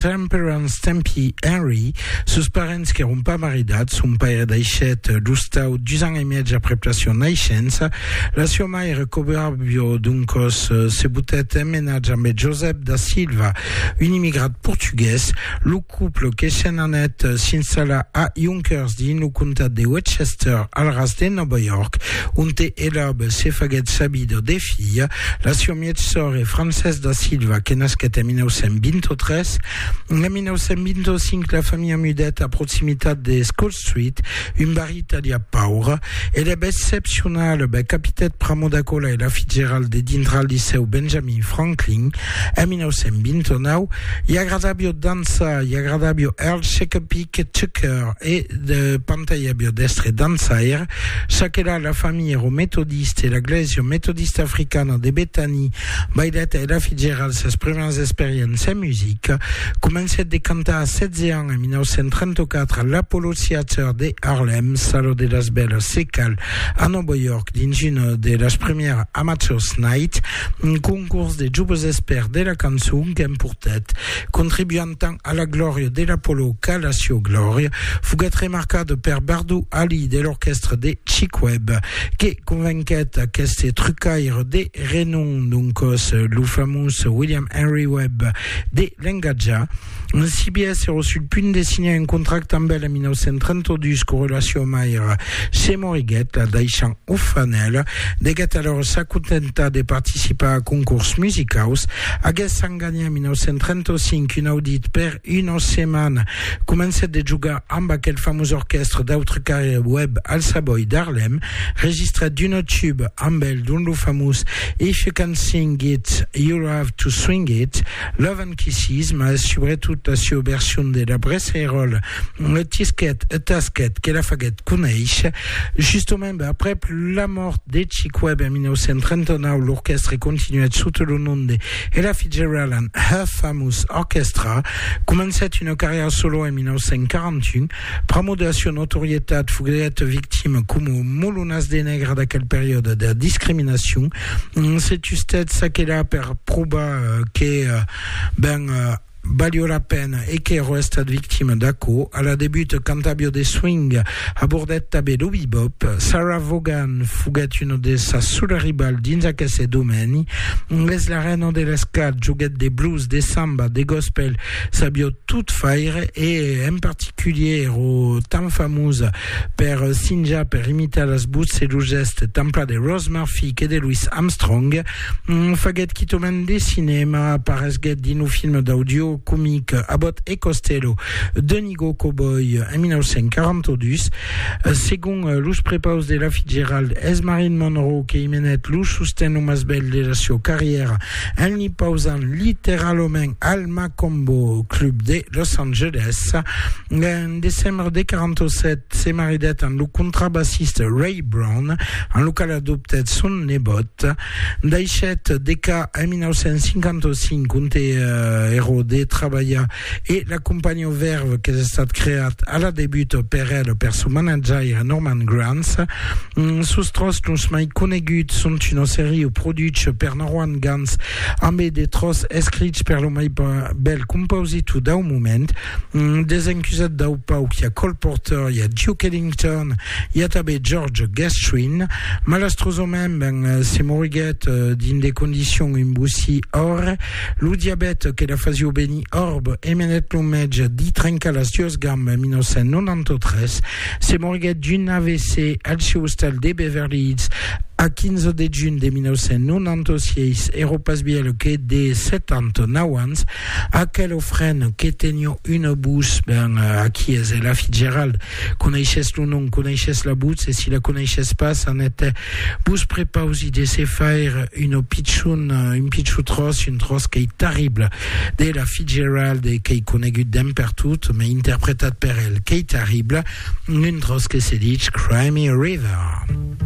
Temperance Tempi Henry, sos parents qu'èron pas maridats, son paire daishèt lo stau dus ans e mièg aprèp la siá naishença. La siá maire, Coberbio Duncos, se botèt en menatge ambé Josep da Silva, un immigrat portugués. Lo couple que se'n anèt s'installar a Yonkers dins lo comtat de Westchester, al ras de Nòva York, onte Elob se faguèt sa vida de filha. La sior mièg sòr e Francés da Silva que nasquèt en 1923. En 1925 la familha mudèt a proximitat de School Street, un barri italià paure. Ela eb excepcionala, bèth capitèt Pramo da Cola e la Fitzgerald de dintrar al Licèu Benjamin Franklin en 1929. I agradàbio dançar, i agradàbio Earl Shekapeake Tucker e de Pantaia Biodestre dançaire. Ça qu'era la familha ero metodiste e la glèsia metodista africana de Bethany, Bailèt Ella Fitzgerald sas primièras experiences en musica. Comencèt de cantar a 16 ans en 1934 a l'Apollo Theater de Harlem, Sala de las Bèlas se cal, a Nòva York dins una de las primièras Amateurs Night, un concors de joves expèrts de la cançon qu'emportèt, contribuant tant A la glòria de l'Apollo qu'a la sieu glòria, foguèt remarcada per Bardou Ali de l'orquèstra de Chic-Webb, que convenquèt aqueste trucaire de renom, doncòs lo famós William Henry Webb, de l'engatjar. En CBS èra sul punt de signar un contracte amb el en 1932 quora la sieu maire se moriguèt, la daishant orfana. Ela deguèt alòra s'acontentar de participar a concors musicaus, aguessan L'an 1935, un audit per una setmana, comencèt de jogar amb aquel famós orquèstre d'autre qu'aire Webb al Savoy d'Harlem, registrèt d'una tube amb el dont lo famós If you can sing it, you'll have to swing it, Love and Kisses, mas subretot la sua version de la Bressairola e tisquèt e tasquèt que la faguèt conéisher. Justament, aprèp la mòrt de Chick Webb en 1939, l'orquèstre continuèt sota lo nom de Ella Fitzgerald and Her Famous Orchestra comencèt una carrièra solo en 1941. Pr'amor de la sua notorietat, foguèt victima, coma molonas de nègre d'aquel periòde, de la discriminacion. Se tustèt çaquelà per probar que ben Valió la pena e qu'èro estat victima d'aquò. A la debut, cantàvio de swing, abordèt tanben lo bebop. Sarah Vaughan foguèt una de sas sola rival dins aqueste domèni. Es la rèna de l'esclat, joguèt de blues, de samba, de gospel, sabió tot faire e en particulier èro tan famosa per sinjar, per imitar las votz e los gèstes tant plan de Rose Murphy que de Louis Armstrong. Hum, faguèt quitament de cinèma, aparesguèt dins lo film d'audiò comic Abbott e Costello d'un Igor Cowboy en 1942. Segon los prepaus de la Fitzgerald, es Marilyn Monroe que imenèt lo sosten lo mas bèl de la sieu carrièra en li pausant literalament al Macombo Club de Los Angeles. En decembre de 47, se maridèt amb lo contrabassista Ray Brown, amb lo qual adoptèt son nebòt. Daishèt de ca en 1955, onte Hero de trabalhar e la companhiá Verve qu'es estat creat a la debut per el per son manatjaire Norman Granz. Sos tròç los mai coneguts son una serie produch per Norman Granz ambe de tròç escrich per lo mai bèl compositor dau moment, Desencusat dau pauc, i a Cole Porter, i a Duke Ellington, i a tanben George Gershwin. Malastrosament, ben, se moriguèt dins de condicions un bossí òrre. Lo diabèt que la fasió venir òrb emenèt lo mètge d'i trencar las duas gambas en 1993. Se moriguèt d'un AVC al seu ostal de Beverly Hills a 15 de junh de 1996, èra pas bièlh que de 79 ans. Aquel ofren que tenió una votz, ben, aquí es Ella Fitzgerald. Coneishes lo nom, coneishes la votz, e si la coneishes pas, Annette, vos prepausi de se faire una pichon, un pichon tròç, un tròç qu'ei terrible, d'Ella Fitzgerald e qu'ei conegut d'en pertot, mai interpretat per el, qu'ei terrible, un tròç que se ditz Cry Me a River.